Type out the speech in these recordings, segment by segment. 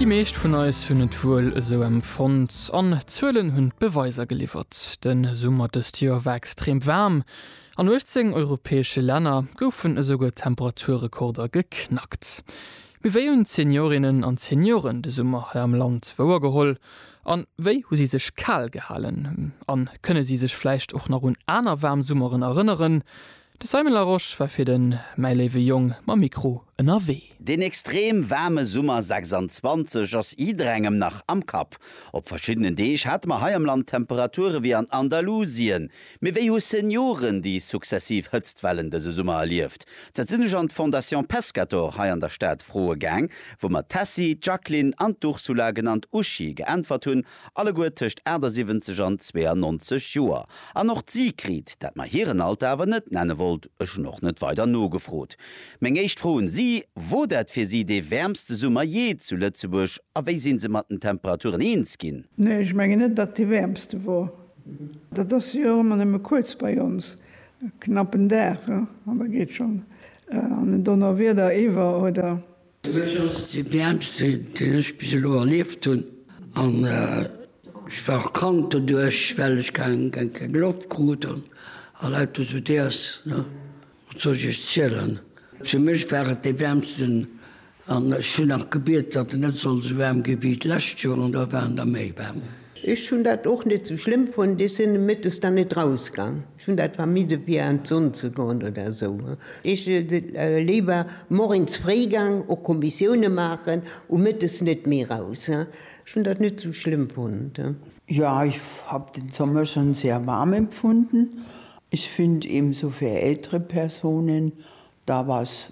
Déi meescht vun eis hunn et wuel esou empfonnt, an d'Zuelen hunn d'Beweiser geliwwert. De Summer dëst Joer war extrem waarm. An 18 europäesche Länner goufen esouguer Temperaturrekorder geknackt. Mee wéi hunn d'Seniorinnen an d'Senioren de Summer hei am Land wouer geholl? A wéi hu si sech kal gehalen? A kënne si sech vläicht och nach un aner waarm Summeren erënneren? De Simon Larosche war fir de Mäi léiwe Jong mam Mikro ënnerwee. Deen extrem waarme Summer 26 ass jidderengem nach am Kapp. Op verschiddenen Deeg hate mer hei am Land Temperature wéi an Andalusien. Mee wéi hu Senioren déi successiv Hëtztwellen dëse Summer erlieft? Dat sinn ech an d'Fondation Pescator hei an der Stad froe gaang, wou mer d'Tessy, d'Jacqueline an d'Ursula, genannt Uschi, geäntwert hunn alleguer tëscht 78 an 92 Joer, an och d'Sigrid, dat mer hiren Alter awer net nenne wollt, ech hunn och net weider nogefrot. Meng éischt Fro un si, Wor dat fir si dee wäermste Summer jee zu Lëtzebuerg a wéi sinn se mat den Temperaturen eens ginn? Nee, ech mengen net, datt dee wäermste wor. Dat ass jo och ëmmer nëmme kuerz bei ons, e knappen Dag, an da geet schonn an den Donnerwieder iwwer oder Dëst ass déi wäermste, déi ech bis elo erlieft hunn. An ech war och krank doduerch, well ech keng Loft krut an lauter esou Déers. Wat soll ech Iech zielen? Fir mech war et dee wäermsten an ech hunn nach gebiet, datt en net soll esou waarm ginn, wéi d'lescht Joer. An do war en da méi waarm. Ech hunn dat och net esou schlëmm fonnt. Ech sinn nomëttes dann net rausgaang. Ech hun dat vermidden fir an d'Sonn ze goen oder esou. Ech léiwer morgens fréi gang och Kommissiounen maachen u Mëttes net méi raus. Ech hun dat net sou schlëmm fonnt. Jo ich hab den Sommer schon sehr warm empfunden. Ich find eben so fir ältere Personen da was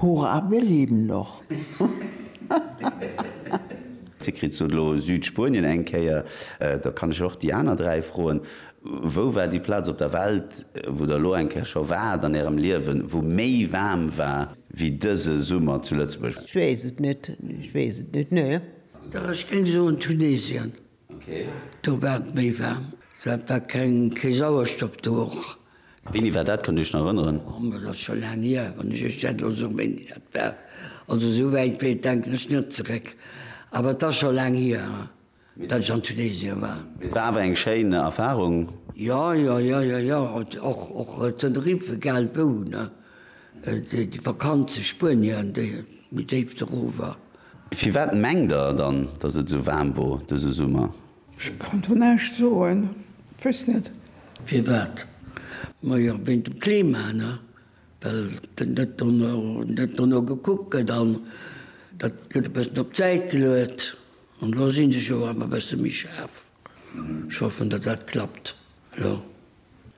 Hurra wir leben noch! Dir kritt se elo, Südspuenien eng Kéier. Da kann ech och déi aner dräi froen, Wou war déi Plaz op der Welt, wou Der elo eng Kéier scho waart an Ärem Liewen, wou méi waarm war wéi dëse Summer zu Lëtzebuerg? Ech weess et net, ech weess et net, nee. Dach, ech géing soen Tunesien. Do war et méi waarm. Dat war keng, kee Sauerstoff do och. Wéini war dat? Kënnt Dir Iech nach erënneren? Oh, ma dat ass scho laang hier, wann ech Iech dat elo soen, wéini dat war. Also esou wäit wéi, denken ech net zeréck. Awer et ass scho laang hier, datt ech an Tunesien war. Mee et war awer eng schéin Erfarung. Jo, jo, jo, jo, jo. Och, och Tenerife, egal wou, ne? Déi Vakanz zu Spuenien, déi méi déif doruewer. Firwat mengt der dann, dass et esou waarm wor dëse Summer? Ech kann do näischt soen, weess net. Firwat? Ma jo, wéint dem Klima, ne? Well dat do no, dat do no gekuckt gëtt an dat gëtt e bëssen op d'Säit geluet. An elo si se jo awer e bësse méi schaarf. Ech hoffen, datt dat klappt elo.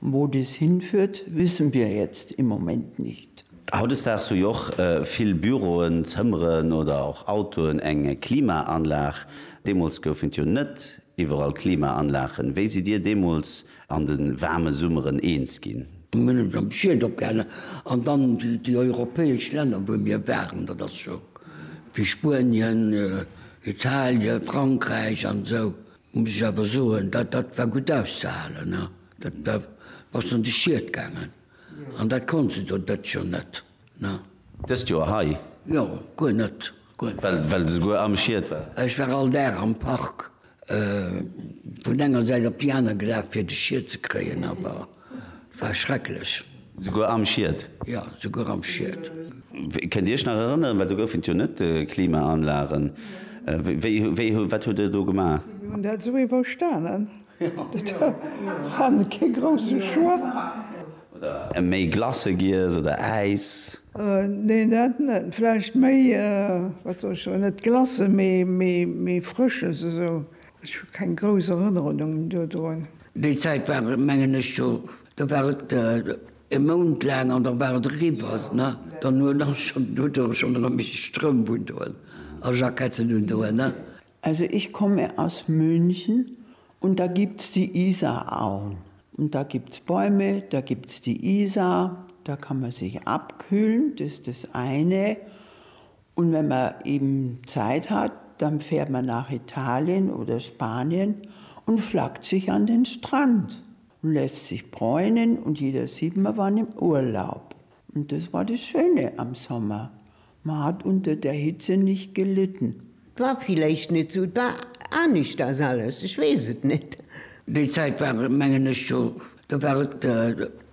Wo dies hinführt, wissen wir jetzt im Moment nicht. Hautdesdaags hu jo och vill Büroen, Zëmmeren oder och Autoen eng Klimaanlag. Deemools goufen et jo net iwwerall Klimaanlagen. Wéi sidd Dir deemools an de waarme Summeren eens ginn? Mir hunn eis am Schiet opgehalen an dann déi europäesch Länner, wou mir waren, dat ass scho wéi Spuenien, Italien, Frankräich an esou, Muss ech awer soen, dat dat war gutt auszehalen. Da bass de an de Schiet gaangen. An dat konnt se do dëst Joer net. Dëst Joer hei? Jo, guer net. Well de souguer am Schiet war? Ech war all Dag am Park vun enger Säit op déi aner gelaf, fir de Schiet ze kréien. Awer War schrecklech. Souguer am Schied? Jo, souguer am Schied. Kënnt Dir Iech nach erënneren, well do gouf et jo net Klimaanlagen, wéi, wéi, wat hutt Der do gemaach? Mir hunn dat esou iwwerstanen. Dat war kee grousse Choix. Oder méi Glace giess oder Äis? Nee, dat net. Vläicht méi, wat soll ech soen, net Glace, mee, mee, mee Frësches esou. Ech hu keng grouss Erënnerungen dodrun. Déi Zäit war et, mengen ech, scho, da war et e Mount laang an da war et eriwwer. Ne? Dann huet da schonn, huet do schonn erëm ee Stroum undoen a Jacketten undoen. Ne? Also, ich komme aus München und da gibt's die Isarauen und da gibt's Bäume, da gibt's die Isar, da kann man sich abkühlen, das ist das eine Un wenn mer eben Zeit hat dann fährt mer nach Italien oder Spanien und flackt sich an den Strand und lässt sich bräunen und jeder sieht mer waren im Urlaub und das war das Schöne am Sommer, mer hat unter der Hitze nicht gelitten. War villeicht net sou, et war aneschters alles, ech wees et net. Déi Zeit war mengen ech jo Da war et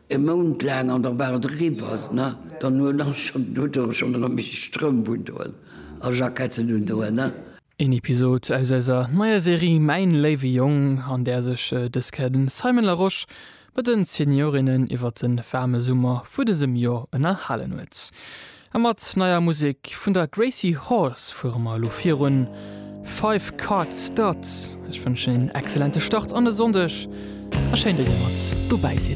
e Mount laang an da war et eriwwer. Ne? Dann huet ass schonn do do schonn erëm méi Stroum vun doen a Jacketten un doen. Ne? Een Episod aus eiser neier Serie Mäin léiwe Jong, an där sech de Scaden Simon Larosche mat de Seniorinnen iwwer de waarme Summer vu dësem Joer ënnerhalen huet. A mat neier Musek vun der Gracie Horse fuere mer elo virun. Five Card Stud. Ech wënschen een excellente Start an de Sonndeg a schéin, datt dir mat dobäi sidd.